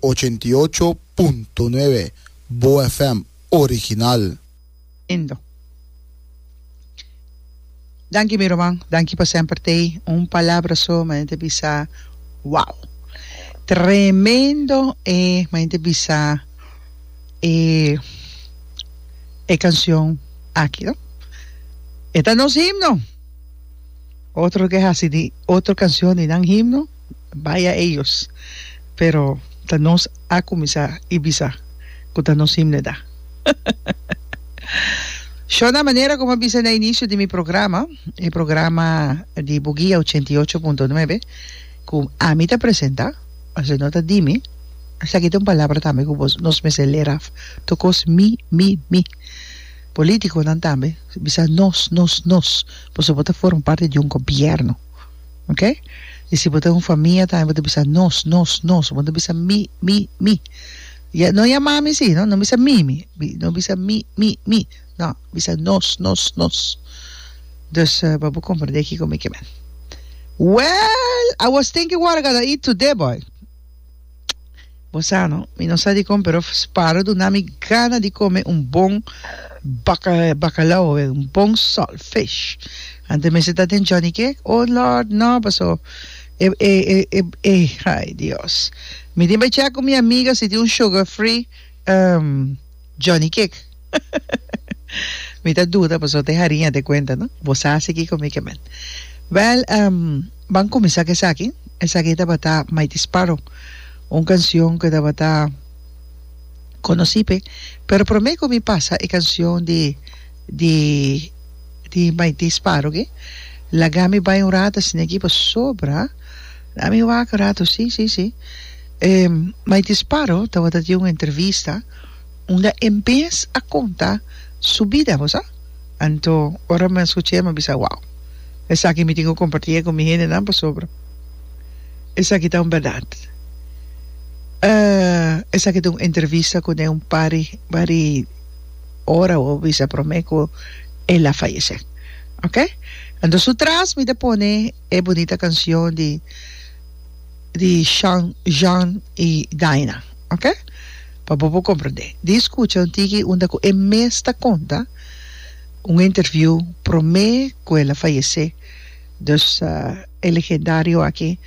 Ochenta i ocho punto nuebe Boa FM original. Lindo. Danki mi ruman, danki pa semper tei un palabra so m'a hende bisa wow. Tremendo e m'a hende bisa e e cancion aki no. E ta nos himno. Otro lo ke hasi di otro cancion di nan himno. Baya eyos, pero ta nos a kuminsá i bisa ku ta nos himneda. Shona manera komo a bisa na inisio di mi programa, e programa di Bugia ochenta i ocho punto nuebe, ku ami ta presentá, asina no ta di mi, esaki ta un palabra tambe ku bos nos mester ler af, tokos mi, mi, mi. Polítikonan tambe bisa nos, nos, nos, pasobra bo ta forma parti di un gobièrnu. Oke? I si bo ta un famia tambe bo ta bisa nos, nos, nos, bo no bisa mi, mi, mi. Ya, no yama mi si, no, no bisa mi, mi, mi, no bisa mi, mi, mi, no, bisa nos, nos, nos. Dus, pa bo komprendé kiko mi ke men. Wèl, I was thinking wou a gana eat today boy. Bo sa no, mi no sa dikon pero Sparo duna mi gana di kome un bon bakalao oe un bon salt fish. Ante mester ta den Johnny Cake? Oh Lord, no, paso e, e, e, e, e, ay Dios. Mi tin bay check cu mi amiga si tin un sugar free um, Johnny Kick mi ta duda pasobra te hariña te cuenta no bo sa haci kiko mi ke men wel em ban cuminsa cu esaki esaki tabata Mighty Sparrow un cancion cu tabata conoci pe pero prome cu mi pasa e cancion di di di Mighty Sparrow ke lagami bai un rato asina aki pasobra lami wak un rato si si si E mai disparo tabata di un entrevista unda e mes a conta su bida, bo sa. Anto ora mi a scuch'e mi a bisa, wow, esaki mi tin cu comparti'e cu mi hendenan pasobra esaki ta un berdad. Esaki ta un entrevista cu den un par di par di ora bo a bisa prome cu el a fayece, ok. Anto su tras mi ta pone e bunita cancion di. di Sean, Jean y Daina, ok? Pa bo por comprende. Di scucha un tiki unda cu e mes ta conta un interview prome cu el a fayece, dus e legendario aki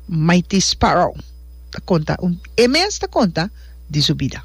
Mighty Sparrow ta conta un, e mes ta conta di su bida.